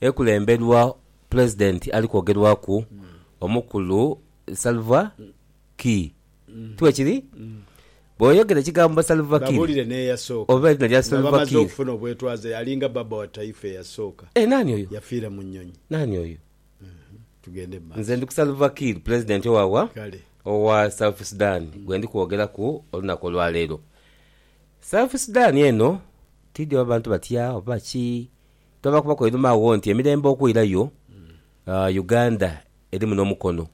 Ekulemberwa Pulezidenti ali kwogerwaku omukulu Salva Kiir. Tibwekiri? Bw'oyogera ekigambo Salva Kiir Babuulire n'eyasooka. oba erina lya Nga Salva bamaze Kiir. okufuna obwetwaze, yalinga baba wa taifa eyasooka. Eh, naani oyo? Yafiira mu nnyonyi. Naani oyo? Tugende mu Nze maaso. ndi ku Salva Kiir, Pulezidenti owa wa? Kale. Owa South Sudan gwe ndi kwogeraku olunaku olwaleero. South Sudan eno, tidhi oba bantu batya oba ki, Twabakubaku einhuma agho nti emirembe okwirayo, Uganda erimu n'omukono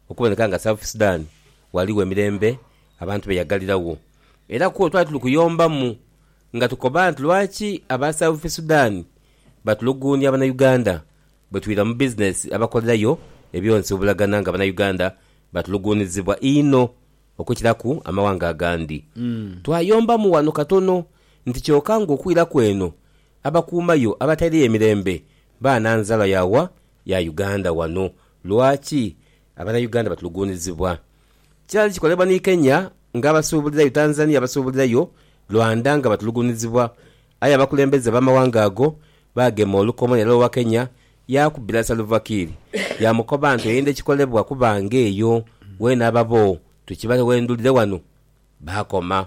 okuboneka nga South Sudan ghaligho emirembe abantu be yagaliragho. Era kwo twali tuli kuyombamu nga tukoba nti lwaki aba South Sudan batuluguunia Banauganda bwe twira mu bizinesi abakolerayo ebyonsi obulagana nga Banauganda batuluguunizibwa inho okukiraku amawanga agandi. Twayombamu ghano katono nti kyoka ng'okwiraku eno Abakuuma yo abataireyo emirembe baana nzalwa ya wa? Ya Uganda wano. Lwaki abana Uganda batuluguunizibwa? Kyali kikolebwa ni Kenya nga abasuubulirayo, Tanzania abasuubulirayo, Rwanda nga batuluguunizibwa. Aye abakulembeze b'amawanga ago baagema olukomo nera owa Kenya yaakubira Salva Kiir yaamukoba nti oyenda ekikolebwa kuba ng'eyo weena ababo tukibaghe wendhulire wano. Baakoma.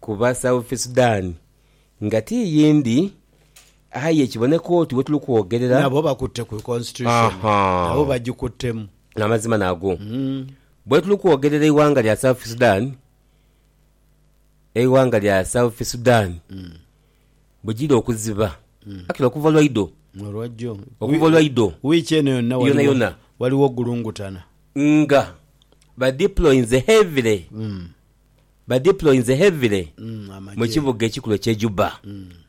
Kuba South Sudan nga ti yindi aye kiboneka oti wetuli kwogerera. Nabo bakutte ku Constitution. Nabo bagikuttemu. Amazima nago. Bwetuli kwogerera eighanga lya South Sudan, eighanga lya South Sudan bwegiri okuziba actually okuva lwaidho, okuva lwaidho yonayona, nga ba deployinze heavily ba deployinze heavily mu kibuga ekikulu ekye Juba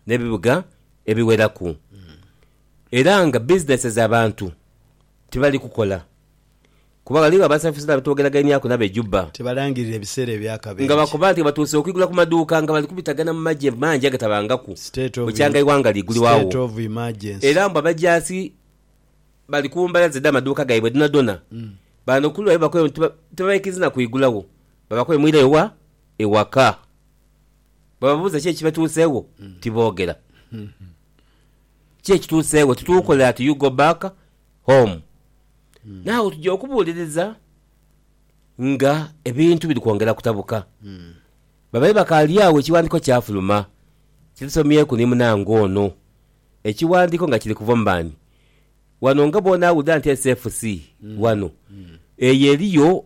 ne bibuga ebiweraku era nga businesses abantu tibali kukola kuba ghaligho abasafizi nga betwogeraganiaku nabo e Juba nga bakoba nti batuuse okwigula ku maduuka nga bali kubitagana mu magye mangi agatabangaku bukyanga eighanga ligulwa wo era mbu abajaasi bali ku mbalaza dha maduuka gaibwe dhonadhona bano kuluaye bakoyo nti tibabaikiriza na kwigula wo Babakoimwira ewa? Ewaka. Bwebababuuza ki ekibatuuseegho, tiboogera. Ki ekituuseegho? Tituukola ati you go back home. Now tuja okubuuliriza nga ebintu biri kwongera kutabuka. Babaire bakaali agho ekiwandiiko kyafuluma. Kisomyeku ni munange ono. Ekiwandiiko nga kiri kuva mu mani. Wano nga bwona awulira nti SFC wano, eyo eriyo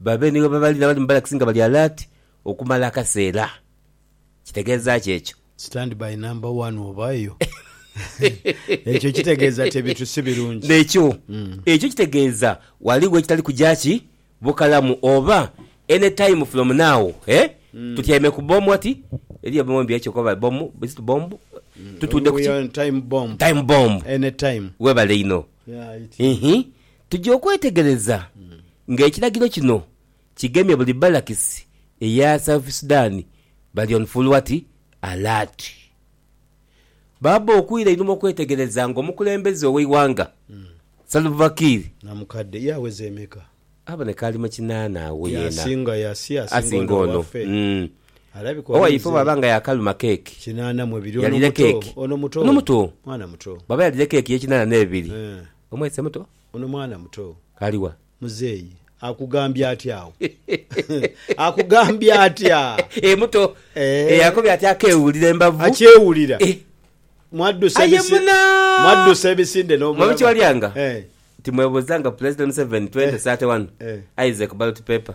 Babe ni ghebabali n'abali mu balakisi nga bali alaati okumala akaseera. Kitegeeza ki ekyo? Stand by number one oba eyo. Ekyo kitegeeza ti ebintu si birungi. N'ekyo. Ekyo kitegeeza ghaligho ekitali kuja ki? Bukalamu. Oba, Any time from now, eh? Tutyaime ku bbomu ati. Eriyo bbomu embi ekyo koba bbomu, is it bomb? Tutuudde ku We ki? are on time bomb. Time bomb. Any time. Weebale inho. Yeah, it is. Ihi. Tuja okwetegereza nga ekiragiro kino kigemye buli balakisi eya South Sudan bali on full what? Alert. Baaba okwira einhuma okwetegereza nga omukulembeze oweighanga Salva Kiir. Na mukadde ye aweza emeka? Aboneka ali mu kinaana agho yena. Yasinga yasi asinga ono umm. Alabika oba Owaife bwaba nga yakaluma cake yalire cake. Ono muto. Bwaba yalire cake ye kinaana nebiri Omwese muto? Ono mwana muto. Ali wa? Muzeeyi. Akugambye atya agho? Akugambye atya? Ee muto. Ee akobye ati akeewulira embavu. Akyewulira. Ee. Mwaddusa ebisi. Aye muna! Mwaddusa ebisinde n'obulago. Mwaba kye walyanga? Ee. Timwebuzanga Pulezidenti Museveni 2031 Isaac Ballot Paper.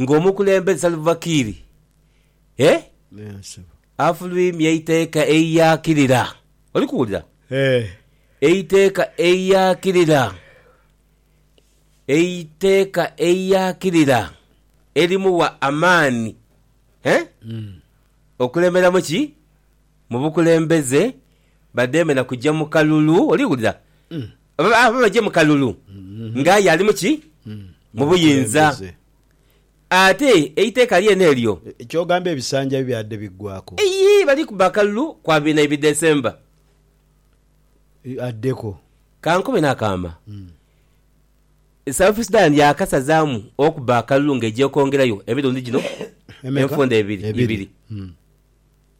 nga omukulembeze Salva Kiir afulwimya eiteeka eiyakirira, oli kuwulira, eiteeka eiyakirira, eiteeka eiyakirira erimuwa amaani okulemberamu ki? Mu bukulembeze. Badheeme na kuja mu kalulu. Oli wulira? Aba baje mu kalulu nga aye ali mu ki? Mu buyinza. Ate eiteeka lyene eryo. Ky'ogamba ebisanja bibyadde biggwaaku? Eyii, bali kubba akalulu kwa biina Ebidesemba. Addeku. Ka nkobe n'akaama. South Sudan yaakasazaamu okubba akalulu ng'eja okwongerayo emirundi gino enfunda ebiri.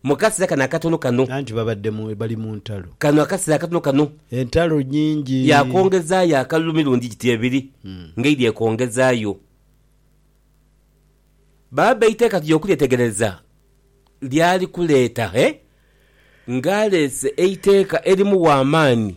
Mu kasera kano akatono kano. Anti babadde mu, bali mu ntalo. Kano akasera akatono kano. Entalo nyingi. Yaakongezaayo akalulu mirundi giti ebiri, nga eidhi ekongezaayo. Baaba eiteeka tuja okulyetegereza lyali kuleeta, he, nga aleese eiteeka erimuwa amaani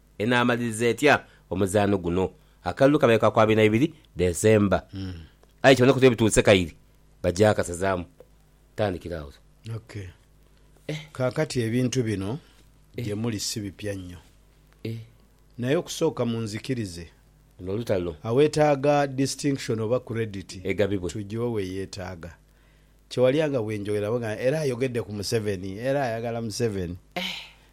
Enaamaliriza etya omuzaano guno? Akalulu kabaire ka ku abiri na ibiri December, aye kiboneka oti webituuse kaire bagyakasazaamu kutandikira agho. Ok. Kaakati ebintu bino gye muli si bipya nnyo. Naye okusooka munzikirize. Luno lutalo. Aweetaaga distinction oba credit tugiwe we yeetaaga. Kye walya nga bwe njogerera bwengamba era ayogedde ku Museveni, era ayagala Museveni.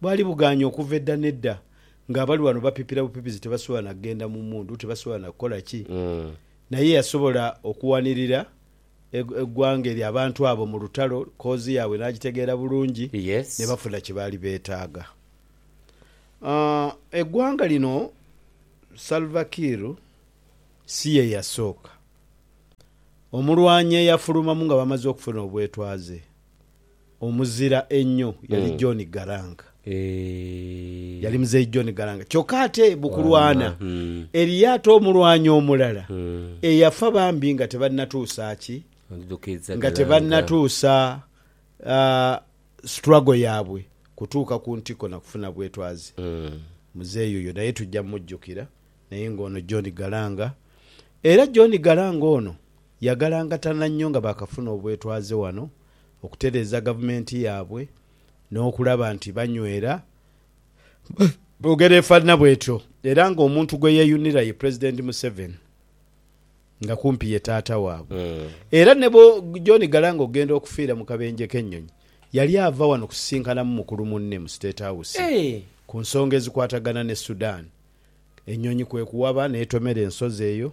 Bwali bugaanyi okuva edda n'edda nga abali wano bapipira bupipizi tebasobola na kugenda mu mundu, tebasobola na kukola ki. Naye yasobola okuwanirira eggwanga eryo, abantu abo mu lutalo, koozi yaabwe n'agitegeera bulungi, ne bafuna kye baali beetaaga. Eggwanga lino Salva Kiir si ye yasooka. Omulwanyi eyafulumamu nga bamaze okufuna obwetwaze. Omuzira einho yali John Garanga. Yali Muzei John Garanga. Kyoka ate bukulwana eriyo ate omulwanyi omulala eyafa bambi nga tebanatuusa ki? Nga tebanatuusa struggle yabwe kutuuka ku ntiko na kufuna bwetwaze. Muzei oyo naye tuja mujukira naye nga ono John Garanga era John Garanga ono Yagalangatana nnyo nga baakafuna obwetwaze wano okutereeza gavumenti yaabwe n'okulaba nti banywera mu ngeri efaanana bwetyo era ng'omuntu gwe yeeyunira ye Pulezidenti Museveni nga kumpi ye taata waabwe era ne bwo John Galanga okugenda okufiira mu kabenje k'ennyonyi yali ava wano kusisinkanamu mukulu munne mu State House ku nsonga ezikwatagana ne Sudan ennyonyi kwe kuwaba n'etomera ensozi eyo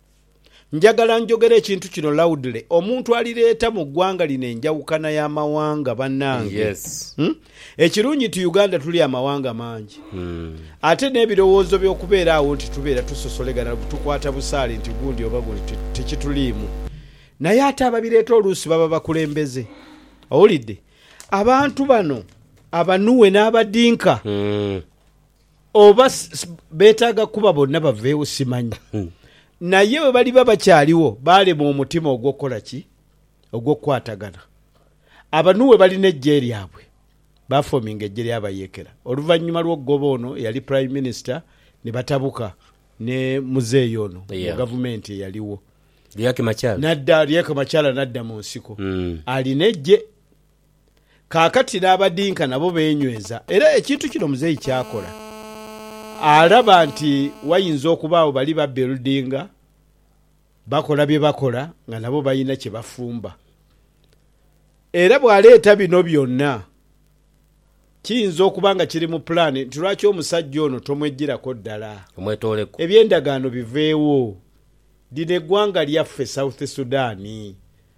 Njagala njogere ekintu kino loudly, omuntu alireeta mu ggwanga lino enjawukana ya mawanga banange. Ekirungi nti Uganda tuli amawanga mangi ate n'ebirowoozo by'okubeera agho nti tubeera tusosolegana tukwata busaale nti gundi oba gundi tikituliimu. Naye ate ababireeta oluusi baba bakulembeze, owulidde? Abantu bano abanuwe n'abadinka. Oba beetaaga kuba bonna baveewo simanyi. Naye bwe baliba bakyaligho baalemwa omutima ogw'okukola ki? Ogw'okukwatagana. Aba Nuwe balina eggye lyabwe. Baafominga eggye ly'abayeekera. Oluvannyuma lw'okugoba ono eyali Prime Minister, ni batabuka ne muzeeyi ono mu gavumenti eyaligho. Riek Machar. N'adda, Riek Machar n'adda mu nsiko. Alina eggye. Kaakati n'abadinka nabo beenyweza. Era ekintu kino muzeeyi ky'akola, alaba nti wayinza okubaagho bali babbildinga, bakola bye bakola nga nabo balina kye bafumba. Era bw'aleeta bino byonna, kiyinza okuba nga kiri mu pulaani nti lwaki omusajja ono tomweggyirako ddala eby'endagaano biveewo, lino eggwanga lyaffe South Sudan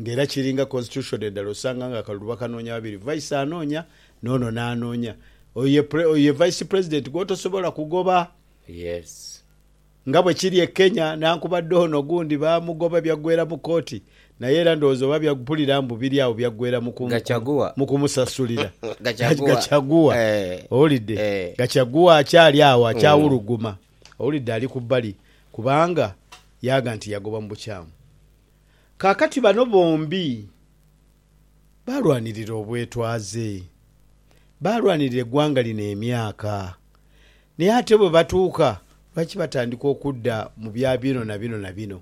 Nga era kiri nga constitution edhala osanga nga akalulu bakanoonya babiri, vice anoonya noono n'anoonya. Oyo ye pre, oyo ye vice president gwotosobola kugoba. Yes. Nga bwe kiri e Kenya nankubadde ono ogundi baamugoba byaggweera mu kooti naye era ndowooza oba bya, mpulira mbu biri awo byaggweera mu ku, Gachaguwa. mu kumusasulira. Gachaguwa. Gachaguwa. Eh. Owulidde? Eh. Gachaguwa akyali awo akyawuluguma. Owulidde? Ali ku bbali kubanga yaaga nti yagoba mu bukyamu. Kaakati bano bombi baalwanirira obwetwaze. Baalwanirira eggwanga lino emyaka. Naye ate bwe batuuka, lwaki batandika okudda mu bya bino na bino na bino?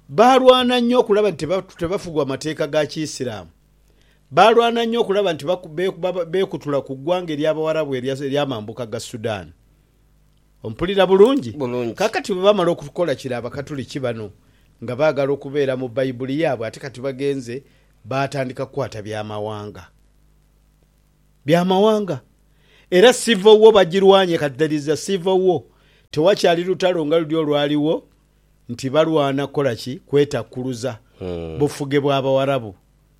Baalwana nnyo okulaba nti tebafugwa mateeka ga Kiisiraamu. Baalwana nnyo okulaba nti beekutula ku ggwanga ery'Abawarabu ery'amambuka ga Sudan. Ompulira bulungi? Bulungi. Kaakati bwe baamala okukola kiro Abakatuliki bano nga baagala okubeera mu Baibuli yaabwe ate kati bagenze baatandika kukwata byamawanga. Byamawanga. Era Civil War bagirwanye kati there is a Civil War. Tewakyali lutalo nga luli olwaliwo nti balwana kukola ki? Kwetakkuluza bufuge bwa Bawarabu.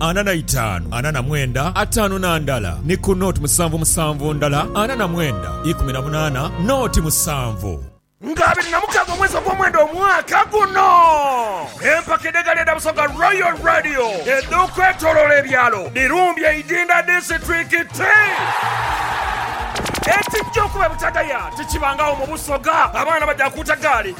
ana na itaanu, ana na mwenda, ataanu na ndala, ni ku noti musanvu musanvu ndala, ana na mwenda, ikumi na munaana, noti musanvu. Nga abiri na mukaaga omwezi ogw'omwenda omwaka guno, empaka edh'egaali edha Busoga Royal Radio edh'okwetoloola ebyalo dhirumbye Idinda disiturikiti. Ekijja okuba ebutagaya tikibangagho mu Busoga, abaana baja kuuta gaali.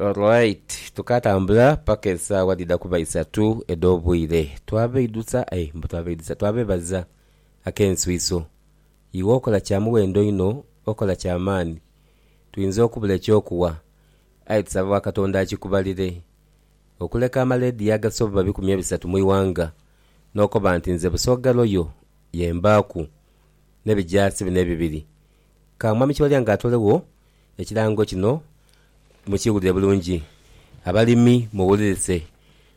Alright, tukaatambula paka esaawa dhidha kuba isatu edh'obwire. Twabeidhusa, aye mbu twabeidhusa, twabebaza ak'enswiso. Iwe okola kya muwendo inho, okola kya maani. Twinza okubula eky'okuwa, aye tusaba wa Katonda akikubalire. Okuleka amaleediyo agasoba bikumi ebisatu mu ighanga, n'okoba nti nze Busoga Royal ye mbaaku, n'ebijaasi bino ebibiri. Ka Mwami Kiwalya nga atolegho. Ekirango kino mukiwulire bulungi, abalimi muwulirise,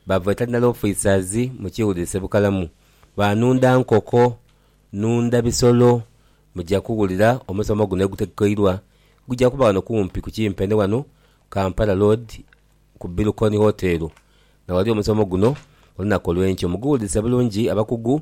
ba veterinary officers mukiwulirise bukalamu, ba nunda nkoko, nunda bisolo muja kuwulira omusomo guno egutegekeirwa guja kuba wano kumpi ku kimpe ni wano Kampala Road ku Bilcon Hotel na wali omusomo guno olunaku olwenkyo. Muguwulirise bulungi abakugu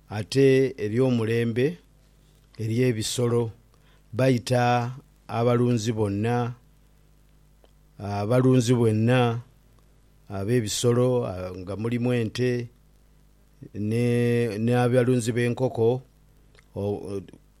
Ate eby'omulembe eri ebisolo, baita abalunzi bonna, abalunzi bonna ab'ebisolo nga mulimu ente n'abalunzi b'enkoko.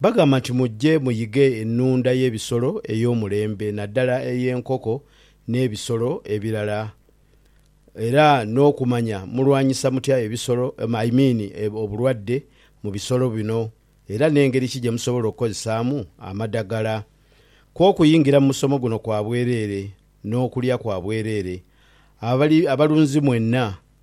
Bagamba nti, Mujje muyighe ennhunda y'ebisolo ey'omulembe naddala ey'enkoko n'ebisolo ebirala era n'okumanya mulwanyisa mutya ebisolo, I mean obulwadde mu bisolo bino era n'engeri ki gye musobola okukozesaamu amadagala. Kw'okuyingira mu musomo guno kwa bwereere n'okulya kwa bwereere. Abalunzi mwenna.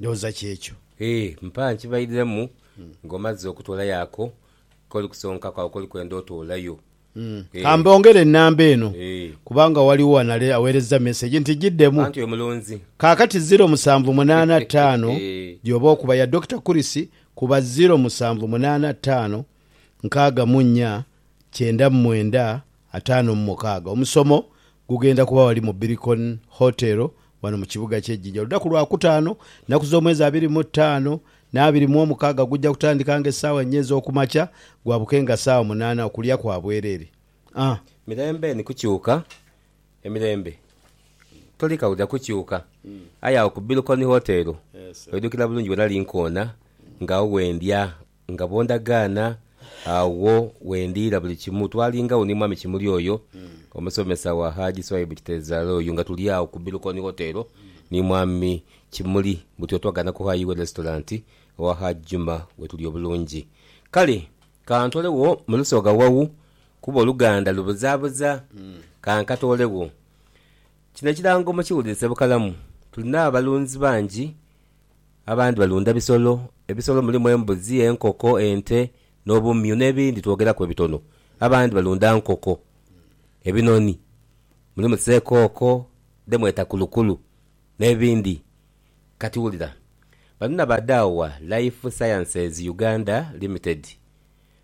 Ndowooza ky'ekyo. Ee, mpa nkibairemu nga omazze okutoolayo ako k'oli kusonkaku agho k'oli kwenda otoolayo. Ka Ee. mbongere nnamba eno, Ee. kubanga ghaligho anale aweerezza mesegi nti giddemu. Anti oyo mulunzi. Kaakati ziro musanvu munaana ttaano gy'oba okuba ya Dokita Kurisi, kuba ziro musanvu munaana ttaano nkaaga mu nnya kyenda mu mwenda Ataano mu mukaaga. Omusomo gugenda kuba ghali mu Biricon Hotel ghano mu kibuga kye Jinja oludaku lwa kutaano naku z'omwezi abiri mu taano n'abiri mu omukaaga gugya kutandika nga esaawa nnya ez'okumakya gwabuke nga saawa munaana okulya kwa bwerere. A. Mirembe ni kukyuka, emirembe toli kawulira kukyuka aye agho ku Biricon Hotel oidhukira bulungi bwe nali nkoona nga agho we ndya Nga bw'ondagaana, agho wendiira buli kimu. Twalingagho ni Mwami Kimuli oyo, omusomesa wa Haji Swaibu Kiterezaale oyo, nga tuli agho ku Bilukoni Hotel ni Mwami Kimuli butyo twagaana kuhaayo iwe Restaurant owa Haji Juma we tuli obulungi. Kale ka ntoolegho mu lusoga wau kuba oluganda lubuzaabuza. Ka nkatoolegho. Kino ekirango mukiwulirize bukalamu. Tulina abalunzi bangi, abandi balunda bisolo. Ebisolo mulimu embuzi, enkoko, ente, n'obumyu n'ebindi twogeraku bwe bitono. Abandi balunda nkoko, ebinoni, mulimu seekooko dhe mweta kulukulu n'ebindi. Kati wulira bano na ba Dawa Life Sciences Uganda Limited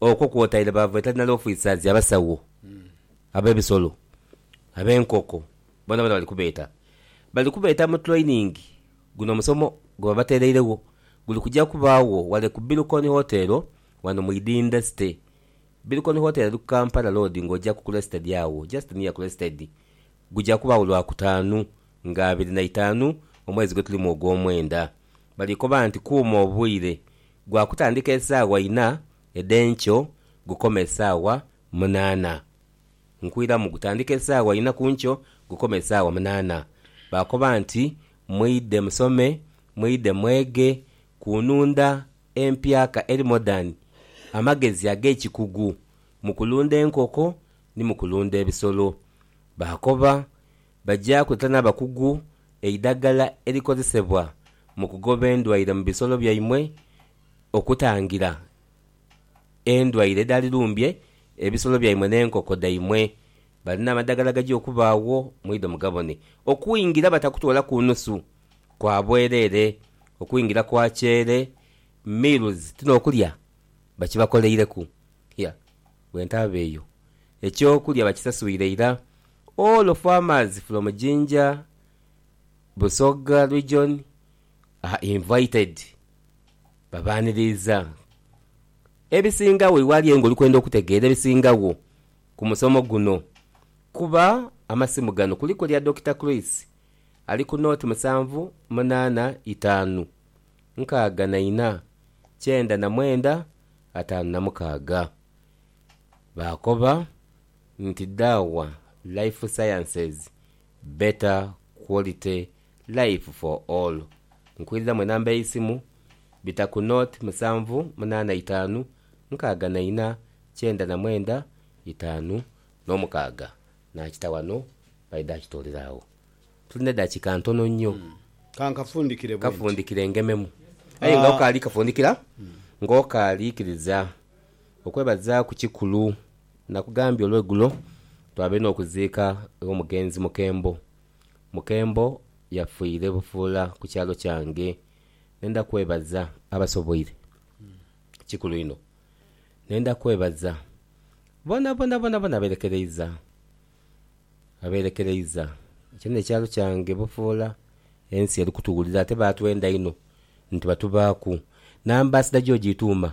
Okwo kwotaire ba veterinary officers, abasawo ab'ebisolo, ab'enkoko, boonaboona bali kubeeta. Bali kubeeta mu training. Guno omusomo gwe babateereiregho guli kugya kubaagho ghale ku Bilcon Hotel ghano mu Idinda City. Bilcon Hotel eri ku Kampala Road ng'ogyaku Crested agho, just near Crested. Gugya kubaagho Lwakutaanu nga abiri na itaanu omwezi gwetulimu ogw'omwenda. Bali koba nti kuuma obwire Gwa kutandika esaawa ina edh'enkyo gukome esaawa munaana. Nkuiramu, gutandika esaawa ina ku nkyo gukome esaawa munaana. Baakoba nti, Mwidhe musome, mwidhe mwege ku nunda empyaka eri modern, amagezi ag'ekikugu mu kulunda enkoko ni mu kulunda ebisolo. Baakoba Baja kweta n'abakugu eidagala erikozesebwa mu kugoba endwaire mu bisolo byaimwe okutangira endwaire edhali lumbye ebisolo byaimwe n'enkoko dhaimwe. Balina amadagala agaja okubaagho mwidho mugabone okwingira batakutoolaku nusu kwa bwereere okwingira kwa kyeere, meals, ti n'okulya bakibakoleireku. Hia! Bwentaba eyo ekyokulya bakisasuire ira all farmers from Jinja, Busoga region are invited babaniriiza ebisingagho iwali aye nga olikwenda okutegeera ebisingagho ku musomo guno kuba amasimu gano kuliku elya Dokita Chris ali ku nought musanvu munaana itaanu nkaaga na ina kyenda na mwenda ataanu na mukaaga. Baakoba nti dhawa life sciences better quality life for all. Nkwidhamu enamba eisimu, bita ku not musanvu munaana itaanu nkaaga na ina kyenda na mwenda itaanu n'omukaaga. Nakita wano baidha akitoolera agho. Tuli n'edakika ntono nnyo. Kankafundikire bwenti. Kafundikire ngememu. Aye nga okaali kafundikira, nga okaali ikiriza okwebazaaku kikulu. Nakugambye olwegulo twabaire n'okuziika ew'omugenzi Mukembo. Mukembo yafiire bufuula ku kyalo kyange. Nenda kwebaza abasoboire. Kikulu inho. Nenda kwebaza bonabona bonabona aberekereiza, aberekereiza kyona ekyalo kyange bufuula. Ensi eri kutuwulira ate baatwenda inho nti batubaaku. N'ambaasada gy'ogyituuma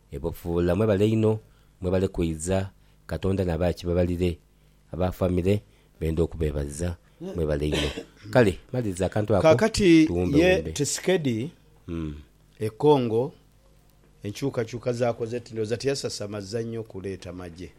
Ebofuula mwebale inho mwebale kwiza katonda naba akibabalire aba family benda okubebaza mwebale inho kale maliriza akantu ako Kaakati tuwumbe ye wumbe. Tshisekedi e Congo enkyukakyuka zaakoze ndhooza tiyasasamazza nnyo kuleeta magye.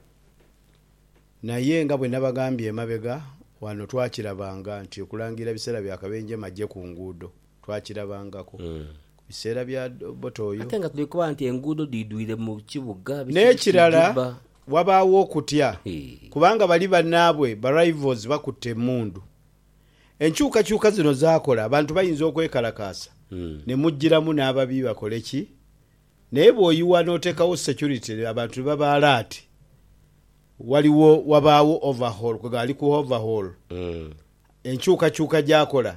Naye nga bwe nabagambye emabega wano twakirabanga nti okulangirira biseera bya kabenje magye ku nguudo. twakirabangako ku biseera bya Obote oyo. Ate nga tuli kuba nti enguudo dhiidhwire mu kibuga biki biki N'ekirala dhibba. wabaagho okutya Hee. kubanga bali bannaabwe ba Rivals bakutte emmundu. Enkyukakyuka zino zaakola abantu bayinza okwekalakaasa ne mujjiramu n'ababi bakole ki? Naye bw'oyiwa n'oteekawo security abantu ne baba alert, waliwo wabaagho overhaul, kwe gali ku overhaul, enkyukakyuka gy'akola.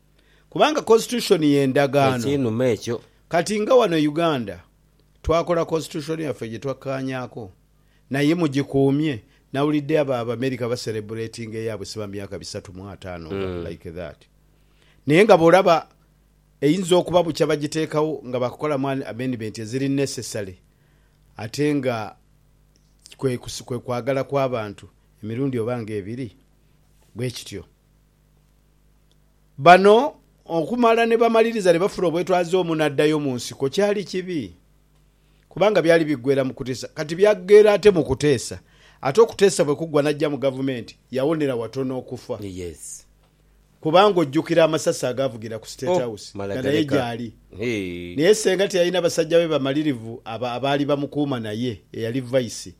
kubanga constitution yendagaano. Ekinuma ekyo. Kati nga wano e Uganda twakola constitution yaffe gyetwakkaanyaako naye mugikuumye. Nawulidde abo Abamerica ba celebratinga eyaabwe siba myaka bisatu mu ataano nga like that. Naye nga bwolaba eyinza okuba bukya bagiteekawo nga baakukolamu amendment eziri necessary ate nga kwe kwagala kw'abantu emirundi oba nga ebiri bwekityo. Bano okumala ni bamaliriza ni bafuna obwetwaze omu naddayo mu nsiko kyali kibi kubanga byali biggwera mu kuteesa kati byaggera ate mu kuteesa ate okuteesa bwe kuggwa n'ajja mu Gavumenti yawonera watono okufa kubanga ojjukira amasasi agaavugira ku State House nga naye gyali naye ssenga teyalina basajja be bamalirivu abaali bamukuuma naye eyali Vice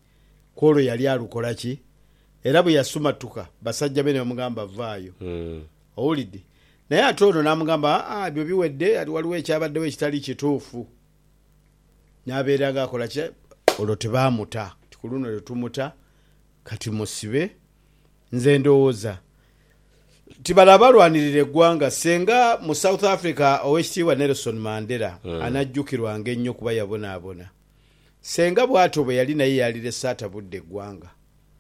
kw'olwo yali alukola ki? Era bwe yasumatuka, basajja be ne bamugamba, Vaayo. Owulidde? Naye ate ono n'amugamba, Aa, ebyo biwedde, ati waliwo ekyabaddewo ekitali kituufu. N'abeera nga akola ki? Olwo tebaamuta. Nti, Ku luno tetumuta, kati musibe. Nze ndowooza nti bano abalwanirira eggwanga, ssenga mu South Africa Ow'ekitiibwa Nelson Mandela anajjukirwanga ennyo kuba yabonaabona. Ssenga bw'atyo bwe yali naye yaalirese atabudde ggwanga.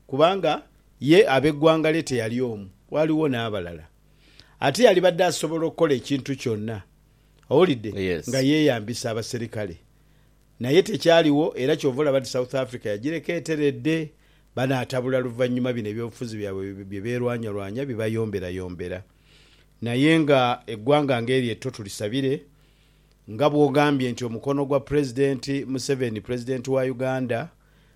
Kubanga ye ab'eggwanga lye teyali omu, waaliwo n'abalala. Ate yalibadde asobola okukola ekintu kyonna, owulidde, nga yeeyambisa abaserikale. Naye tekyaliwo, era kyova olaba nti South Africa yagireka eteredde. Banaatabula luvannyuma bino ebyobufuzi byabwe bye beerwanyalwanya bibayomberayombera. Naye nga eggwanga nga eryo etto tulisabire, nga bw'ogambye nti omukono gwa Pulezidenti Museveni, Pulezidenti wa Uganda,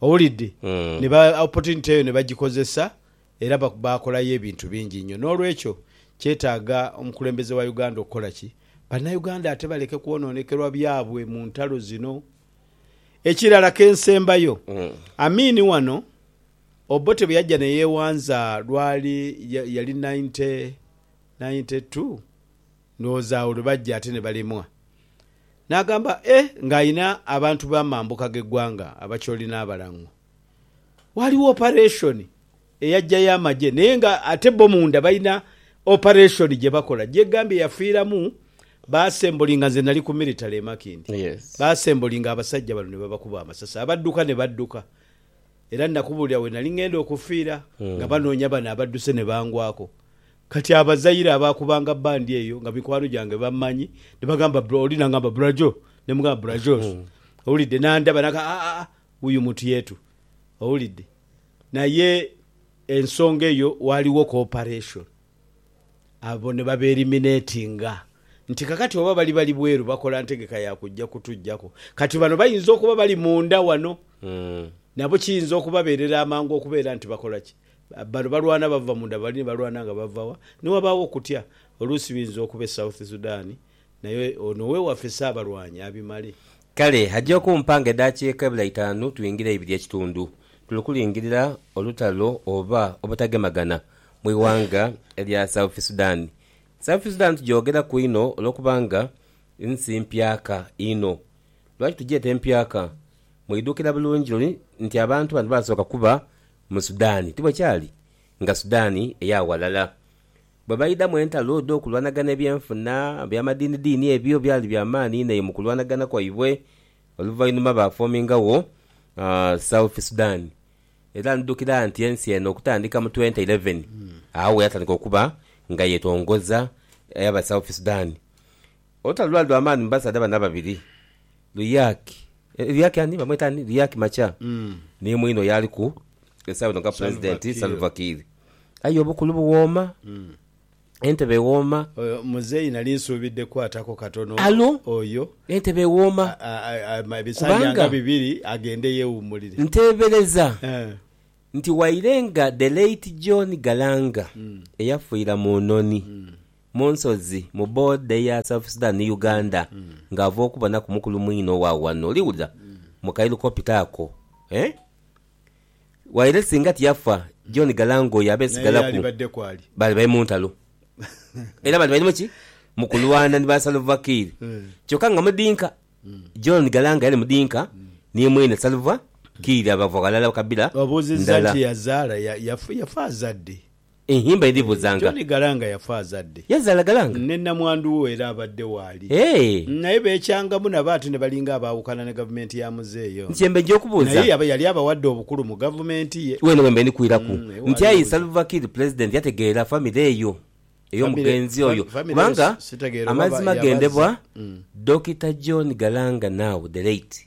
Owulidde? Ne ba, opportunity eyo ne bagikozesa, era ba, baakolayo ebintu bingi inho. N'olwekyo, kyetaaga omukulembeze wa Uganda okukola ki? Bannayuganda ate baleke kwonoonekerwa byabwe mu ntalo zino. Ekirala ke nsembayo, Amin wano, Obote bwe yajja ne yeewanza, lwali, ya, yali ninety, ninety two? Ndowooza agho lwe bajja ate ne balemwa. N'agamba, E, nga alina abantu b'amambuka g'eggwanga, Abacholi n'Abalang'o. Waaliwo opareshoni eyajjayo amagye, naye nga ate bo munda balina opareshoni gye bakola. Gyegambye yafiiramu, baasembolinga, nze nali ku miritale e Makindye, baasembolinga abasajja bano ne babakuba amasasi, abadduka ne badduka. era nakubuulira we nali ng'enda okufiira nga banoonya bano abadduse ne bangwaku. Kati abazaire abaakubanga bbandi eyo nga mikwano gyange bammanyi ne bagamba bro oli n'angamba bra Joe ne mugamba bra Jos owulidde n'andaba n'agamba a a wuyu muntu yeetu owulidde naye ensonga eyo waaliwo cooperation. Abo ne babeeriminetinga nti, Kakati oba bali bali bweru bakola ntegeka ya kujja kutuggyaku, kati bano bayinza okuba bali munda wano. Nabo kiyinza okubabeerera amangu okubeera nti bakola ki? Bano balwana bava munda, bali ni balwana nga bava wa? Ni wabaawo okutya. Oluusi biyinza okuba e South Sudan, naye ono ow'ewaffe si abalwanyi abimale. Kale aja okumpa nga edaakiika ebula itaanu twingire eibiri ekitundu, tuli kulingirira olutalo oba obutagemagana mu ighanga erya South Sudan. South Sudan tugyogeraku inho olwokubanga nsi mpyaka inho. Lwaki tugyeta empyaka? Mwidhukira bulungi luli nti abantu bano baasooka kuba mu Sudan, ti bwe kyali? Nga Sudan eya ghalala. Bwe baidhamu entalo edh'okulwanagana ebyenfuna, eby'amadiinidiini ebyo byali bya maani inho eyo mu kulwanagana kwaibwe. Oluvainhuma baafoomingagho South Sudan, era ndidhukira nti ensi eno okutandika mu twenta ireven agho yatandika okuba nga yetongoza Abasouth Sudan. Olutalo lwali lwa maani mu basaadha bano ababiri, Luyaki, Luyaki ani? Bamweta ani? Luyaki Macha, ni mwine oyo aliku esaawa eno nga Pulezidenti, Salva Kiir. Aye obukulu buwooma, entebe ewooma. Oyo muzeeyi nali nsuubidde kukwatako katono oyo. Entebe ewooma kubanga nteebereza nti waire nga The late John Galanga eyafiira mu Noni Mu nsozi, mu boda eya South Sudan ni Uganda, nga ava okubonaku mukulu mwinhe owa wano. Oli wulira? Mu ka helicopter ako, eh? Waire singa tiyafa, John Galanga oyo abe Naye sigalaku. yaalibadde kwali. Baali bali mu ntalo. Era baali bali mu ki? Mu kulwana ni ba Salva Kiir. Kyoka nga mudinka. John Galanga yali mudinka ni mwine Salva Kiir abava ghalala, kabila Obuuzizza ndala. nti yazaala, ya, yafu, yafa azadde? Enhimba edhibuzanga. Tony Galanga yafa azadde. Yazaala Galanga? Ne namwandu we era abadde waali. Eeh. Naye beekyangamu nabo ate ne balinga abaawukana ne gavumenti ya muzeeyi ono. Nti mbejja okubuuza. Naye yaba yali abawadde obukulu mu gavumenti ye. Weene we mbe ndi kwiraku nti ayi Salva Kiir Pulezidenti yategeera famire eyo ey'omugenzi oyo kubanga amazima gendebwa Dokita John Galanga now the late.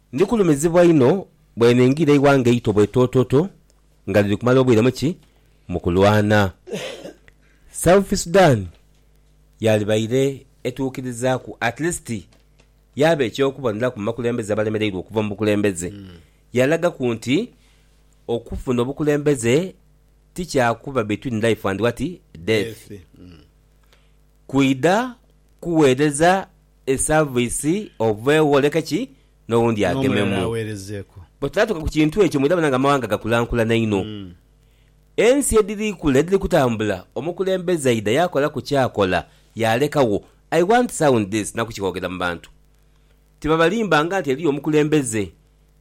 Ndikulumizibwa inho bwe ningira eighanga eito bwetoototo nga liri kumala obwire mu ki? Mu kulwana. South Sudan yaalibaire etuukirizaaku at least yaaba eky'okuboneraku mu bakulembeze abalemereirwe okuva mu bukulembeze. Yalagaku nti okufuna obukulembeze ti kya kuba between life and what? Death. Kwidha kuweereza Esaavisi oveegho oleke ki? N'owundi agememu. Bwe tunaatuuka ku kintu ekyo mwidha bona nga amawanga gakulankulana inho. Ensi edhiri kula edhiri kutambula omukulembeze aidha yaakolaku ky'akola yaalekagho I want to sound this na kukighogera mu bantu. Tibabalimbanga nti eriyo omukulembeze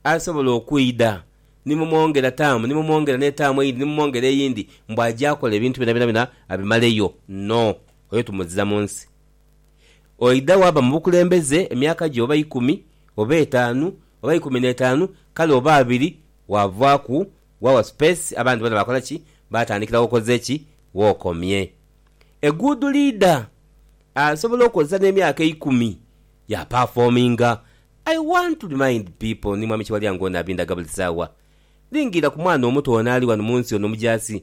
asobola okwidha ni mumwongera taamu ni mumwongera n'etaamu eyindi ni mumwongera eyindi mbu aja akola ebintu byonabyona abimaleyo. No. Oyo tumuzira mu nsi. Oidha waaba mu bukulembeze emyaka gye oba ikumi, oba etaanu, oba ikumi n'etaanu, kale oba abiri, waavaaku, waawa supeesi, abandi boona baakola ki? Baatandikira w'okoze ki? W'okomye. Eguudu liidha, asobola okozesa n'emyaka eikumi, yaapafoominga. I want to remind people, ni Mwami Kiwalya ng'ono abindaga buli saawa, lingiira ku mwana omuto ono ali ghano mu nsi ono omujaasi,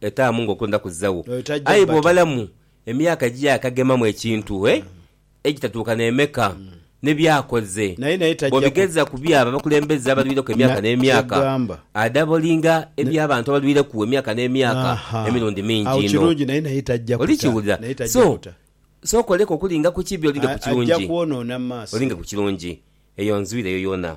Etaamu nga okwenda kuzagho. Aye bw'obalamu emyaka egy'eyakagemamu ekintu, e, egitatuuka n'emeka, ne by'akoze, bw'obigeza ku by'abo abakulembeze abalwireku emyaka n'emyaka, adabolinga eby'abantu abalwireku emyaka n'emyaka emirundi mingi inho. Oli kiwulira? So, sooka oleke okulinga ku kibi olinge ku kirungi. Olinge ku kirungi. Eyo nzwire yo yoona.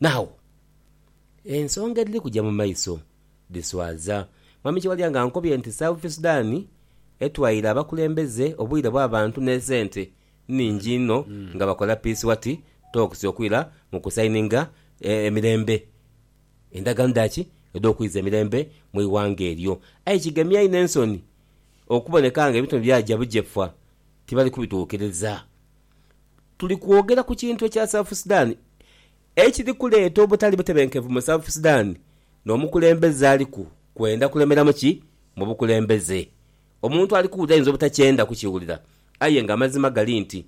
Naagho ensonga edhiri kuja mu maiso dhiswaza. Mwami Kiwalya ankobye nti South Sudan etwaire abakulembeze obwire bw'abantu n'esente nhingi inho nga bakola Peace Wati Talks okwira mu kusayininga emirembe, endagaano dha ki? edh'okwiza emirembe mu ighanga eryo. Aye kigemya inho ensoni okuboneka nga ebintu bino byaja bujefu tibali kubituukiriza. Tuli kwogera ku kintu ekya South Sudan ekiri kuleeta obutali butebenkevu mu South Sudan n'omukulembeze aliku kwenda kulemeramu ki mu bukulembeze. Omuntu ali kuwulira ayinza obutakyenda kukiwulira aye nga amazima gali nti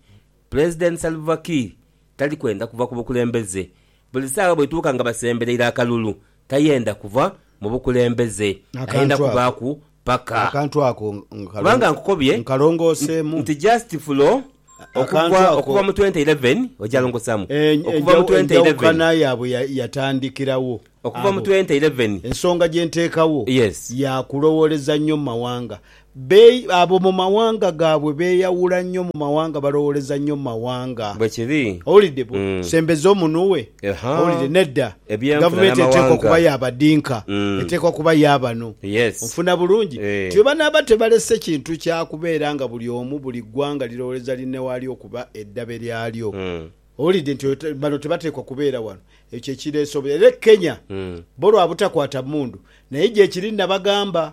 Pulezidenti Salva Kiir tali kwenda kuva ku bukulembeze. Buli saagha bweituuka nga basembereire akalulu tayenda kuva mu bukulembeze, ayenda Akantu ako, kubaaku paka. akantu ako nkalongo, Kubanga nkukobye nkalongooseemu. nti just fulo A- akantu okuva ako- okuva mu 2011 ojalongosaamu E- okuva mu enjawu- 2011 enjawukana yaabwe ya- yatandikirawo okuva mu abo. 2011 Ensonga gye nteekawo Yes. ya kulowooleza nnyo mu mawanga. Be abo mu mawanga gaabwe beeyawula nnyo mu mawanga, balowooleza nnyo mu mawanga. Bwe kiri. Owulidde? Bu, Mm. sembeza omunwe. Aha. Owulidde? Nedda. Ebyenfuna Gavumenti eteekwa n'amawanga. okuba ya badinka. Mm. Eteekwa kuba ya bano. Yes. Onfuna bulungi? Nti Eh. bwe banaaba tebalese kintu kya kubeera nga buli omu, buli ggwanga lirowooleza linne waalyo okuba eddabe lyalyo. Mm. Owulidde? Nti oyo te, bano tebateekwa kubeera wano. Ekyo kye kireese obu. Era e Kenya, Mm. bo lwa butakwata mmundu. Naye gyekiri, nnabagamba,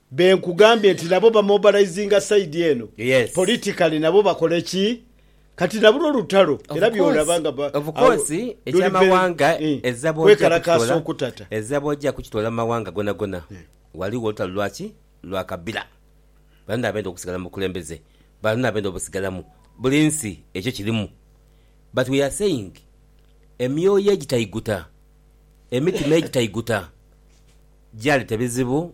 Be nkugambye nti nabo ba mobilizinga side eno Yes. politically nabo bakole ki kati nabulwo olutalo Of era course, byolaba nga ba of awo course, luli very eky'amawanga eh ezza bw'ojja kwekalakaasa kukitoola, okutata. ezza bw'ojja kukitoola mu mawanga gonagona ghaligho olutalo lwa ki? Lwa kabila. Balina abenda okusigala mu bukulembeze, balina abenda obusigalamu, buli nsi ekyo kirimu but we are saying emyoyo egitaiguta, emitima egitaiguta gyaleeta ebizibu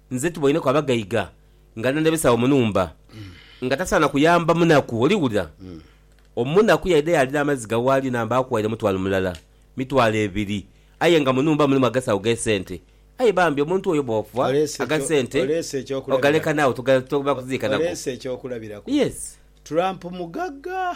Nze tuboineku abagaiga nga n'aneebesawo mu nhumba, nga tasaana kuyamba munaku. Oli wulira? Omunaku yaidha yaalira amaziga waali n'amba akuwaire mutwalo mulala, mitwalo ebiri, aye nga mu nhumba mulimu agasawo gh'esente. Aye bambi omuntu oyo bw'ofa, aga sente ogaleka naagho, toba kuziika nago. Yes. Trump mugagga.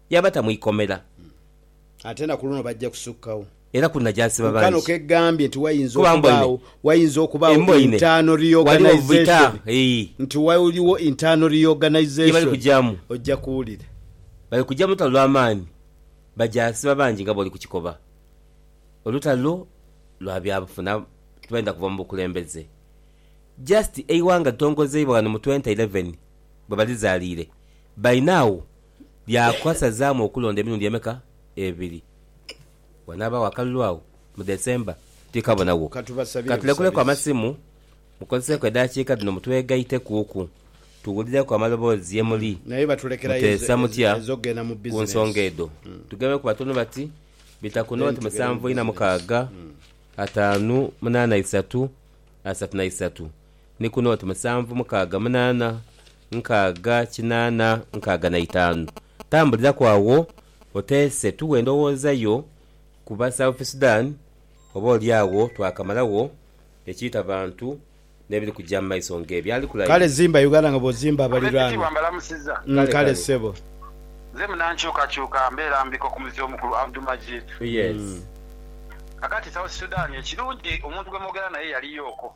Yaabata mu ikomera. Ate na ku luno bajja kusukkawo. Era kunajasiba Ku kano bangi. k'eggambye nti wayinza Kuba mboine. okubaawo wayinza okubaawo E mboine. internal Waliwo vita. reorganisation Eei. nti waliwo internal Gye bali reorganisation kugyamu. ojja kuwulira. Bali kugya mu lutalo lwa maani. Bajasiba bangi nga bwoli ku kikoba. Olutalo lwa byabufuna tibenda kuva mu bukulembeze. Just eighanga litongozeibwa ghano mu twenty eleven bwe balizaliire. By now. Byakasazaamu okulonda emirundi emeka? Ebiri. Wanaabagho akalulu agho mu December? Tikabonagho. Ka tulekuleku amasimu, mukozeseeku edaakiika dhino mutwegaitekuuku, tuwulireku amaloboozi ye muli. Muteesa mutya ku nsonga edho? Tugembeku batono bati, bita ku nooti musanvu ina mukaaga, ataanu munaana isatu, asatu na isatu. ni kuno oti musanvu mukaaga munaana nkaaga kinaana nkaaga na itaanu. Tambuliraku agho oteese tughe endowooza yo ku ba South Sudan oba oli agho twakamalagho ekiita bantu n'ebiri kuja mu maiso ng'ebyo ali kulayi. Kale zimba Uganda nga bw'ozimba abaliraanwa. Kale ssebo. Nze munankyukakyuka mbeera mbiko ku muzi omukulu Abdu Majid. Kakati South Sudan ekirungi omuntu gwe mwogera naye yaliyooko.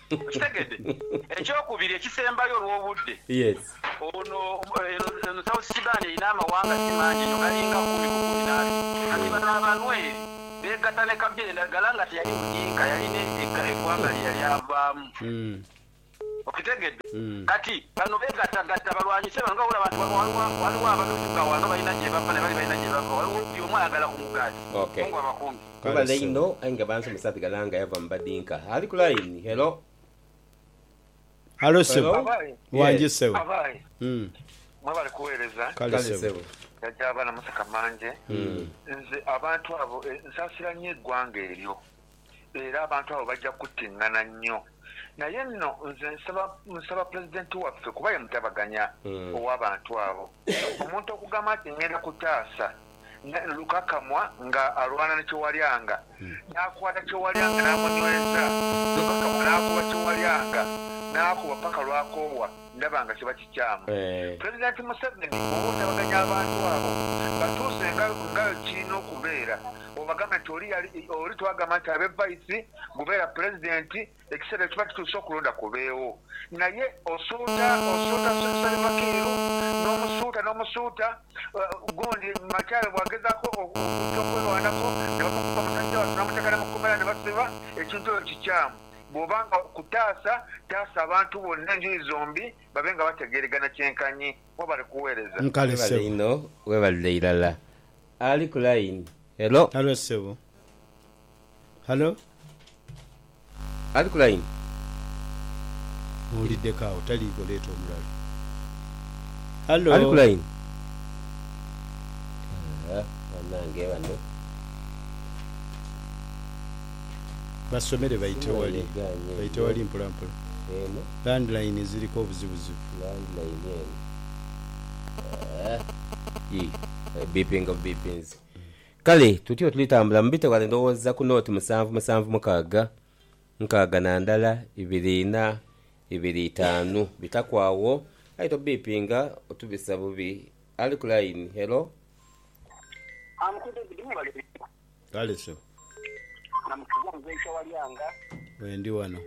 Okitegedde? Eky'okubiri ekisembayo olw'obudde, ono, eno, eno South Sudan erina amawanga si mangi inho, galinga kumi ku kumi n'abiri. Kati bano Abanweri beegatta ne kabila endagala nga teyali Mudinka, yali ne e, eggwanga lye yali avaamu. Okitegedde? Kati, bano beegattagatta balwanyise bano. Nga bw'olaba nti wano waliwo, waliwo abamefuga wano balina gye bava, ne bali balina gye bava, waliwo buli omu ayagala ku mugaati. Mungu abakuume. Webale inho aye nga bansomesa nti Galanga yava mu badinka. Ali ku line. Hello. Halo sebo. Abaye. Wangye Yes. sebo. Abaye. Mm. Mwebale kuwereza. Kale Kale sebo. sebo. Jajja abaana museka manje. Nze abantu abo e, nsasira nnyo egwanga eryo era abantu abo bajja kuttingana nnyo. Naye nno nze nsaba, nsaba Pulezidenti waffe kuba ye mutabaganya owabantu abo. Omuntu okugamba nti ngenda kutaasa Naye Lukakamwa nga alwana ni Kyowalyanga, yaakwata Kyowalyanga n'amunyweza. Lukakamwa n'akuba Kyowalyanga, n'akuba paka lw'akoowa ndaba nga kiba kikyamu. Pulezidenti Museveni bw'oba otabaganya abantu abo, batuuse nga nga kirina okubeera. Obagambe nti oli yali, oli twagamba nti abe Vice, gubeera Pulezidenti, Ekiseera bwe kiba kituuse okulonda kubeegho, naye osuuta, osuuta, asuubisa biva keeru, n'omusuuta, n'omusuuta, gundi Machaare bw'agezaaku okujja okwerwanako ne bamukuba musajja wattu n'amuteeka ne mu kkomera ne basiba, ekintu ekyo kikyamu. Bw'oba nga okutaasa, taasa abantu bonna enjuyi zombi babe nga bategeeregana kyenkanyi. Mwebale kuweereza. Webale inho, webalire irala. Ali ku line. Hello. Halo ssebo. Halo? Ali ku line? Mpuuliddeko awo taliiko leeta omulala. Halo? Ali ku line? Haa banange bano. Basomere baite wali. Baite wali mpola mpola. Landline ziriko obuzibuzibu. Landline eno. Haa. Yii. Ebipinga bubipinze. Kale tutyo tulitambula mu bite ghale ndhowooza ku nooti musanvu musanvu mukaaga, nkaaga na ndala ibiri ina ibiri itaanu. Bitaku agho aye tobiipinga otubisa bubi. Ali ku layini, hello? Kale so. Bwendi ghano.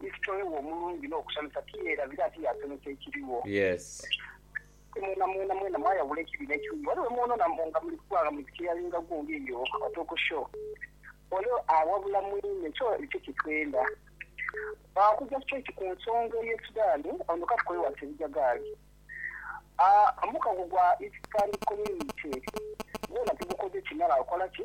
ni kitole we omulungi n'okusanhusa, tiyeerabira ate yaasomesa ekirigho. Aye mwena mwena mwena mwayawula ekibi n'ekirungi. Ghale we mwonoona mbu nga muli kukula nga muli ku kyeyalinga gundi eyo otokosho, ole awabula mwine. Kyo nikyo kye twenda. Okugya straight ku nsonga ey'e Sudan, ono ka tukole wansi ebijagaali. Omukago gwa East Stand Community gwona tugukoze kimala. Okola ki?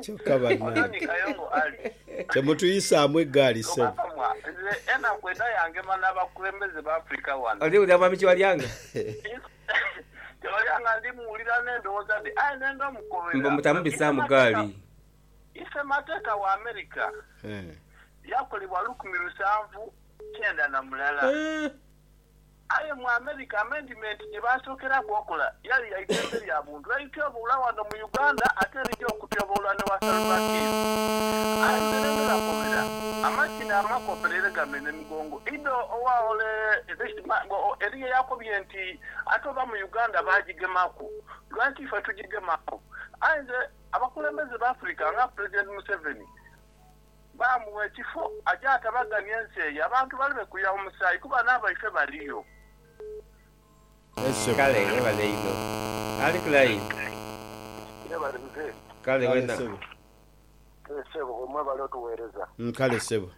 Kyoka banange temutuyisaamu egaali sebo. Oli wulira mwami Kyewalyanga? Mbu mutamubisaamu gaali. Eehh. Aye mu America amendimenti gye baasookeraku okola yali ya idembe lya buntu elityoboola ghano mu Uganda ate elija okutyoboolwa ni wa Salva Kiir. Aye nze ne ndhola kobera amakyi n'amakopera era gamera emigongo idho owa ole this man eriyo eyakobye nti ate oba mu Uganda baagigemaku lwaki ife tugigemaku? Aye nze abakulembeze b'Africa nga Pulezidenti Museveni, Baamugha ekifo aje atabaganie ensi eyo, abantu balibe kuya mu musaayi, kuba n'abaife baliyo. Kale webale inho. Ali ku line? Yebale mzee. Kale wena. Kale sebo. Gwe mwebale otuwereza. Kale ssebo.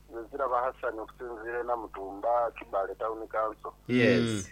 Nze Ziraba Hassan okusinziira e Namutumba, Kibaale Town Council. Yes.